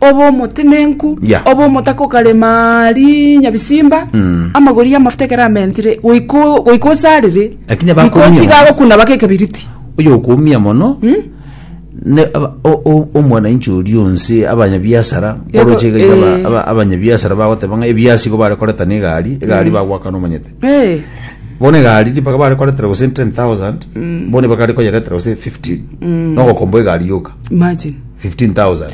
obe omotenenku Yeah. obe omotaka okarema rinya bisimba amagori y'amafuta ekero amentire goiko goika osarire Lakini abakobia- because iga agokuna baka ekebiriti oyo okoumia mono ne aba- o- o- omwananchi oria onse abanyabiasara Yego, oroche iga iga aba- eh. aba- abanyabiasara bagoteba ng'a ebiasi igo bare koreta na egari egari bagwakana omanyete Eh, bono egari ripaka bare koretera gose 10000 bono bakare koyeretera gose 15 nogokomba egari yoka imagine 15,000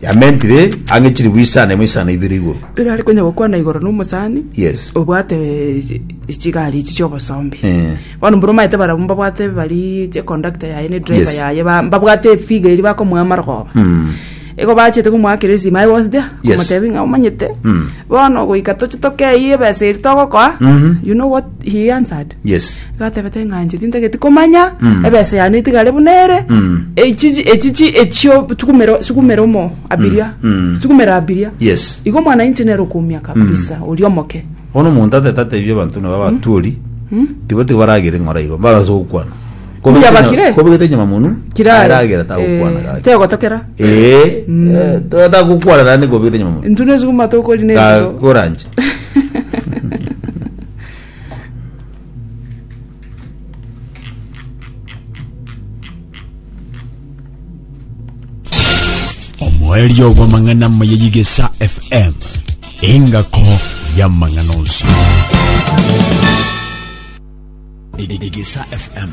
yamentire ang'e chilifu isano emo isano ibere igoro. Riria are konya gokwana igoro na omosani Yes. obwate eh, chigari echi chiobosombi Eh. bono mbura omaete barabwo mbabwate bari chekondakta yaye ne driver Yes. yaye ba- mbabwate efiga eri bakomoa amarogoba igo bachete komoakera esima aye was there Yes. komotebi ng'a omanyete Mm. bono goika toche tokeyie ebesa eri togokoa Mhm. you know what he answered Yes. Agateba te ng'a inche tintageti komanya Mm. ebesa yane itigare buna ere Mm. echichi echichi echio tukumero sukumera omo abiria Mm. Mm. sukumera abiria Yes. igo omwana inche nero okoumia kabisa oria omoke Bono omonto atete atebi abanto nabo abatuori. Tibo tibo baragere ng'ora igo. Baraso gokwana. Mbuya bakire. Kobegete nyama munu. kirare Aragera tagokwana eh, gaki. tegotokera Eh. eh, Tata gokwana nande kobegete nyama munu. intune sukuma tokori ne Ga- Goranche. omoerio bw'amang'ana amaya y'igesa fm engako y'amang'ana onsi Igisa FM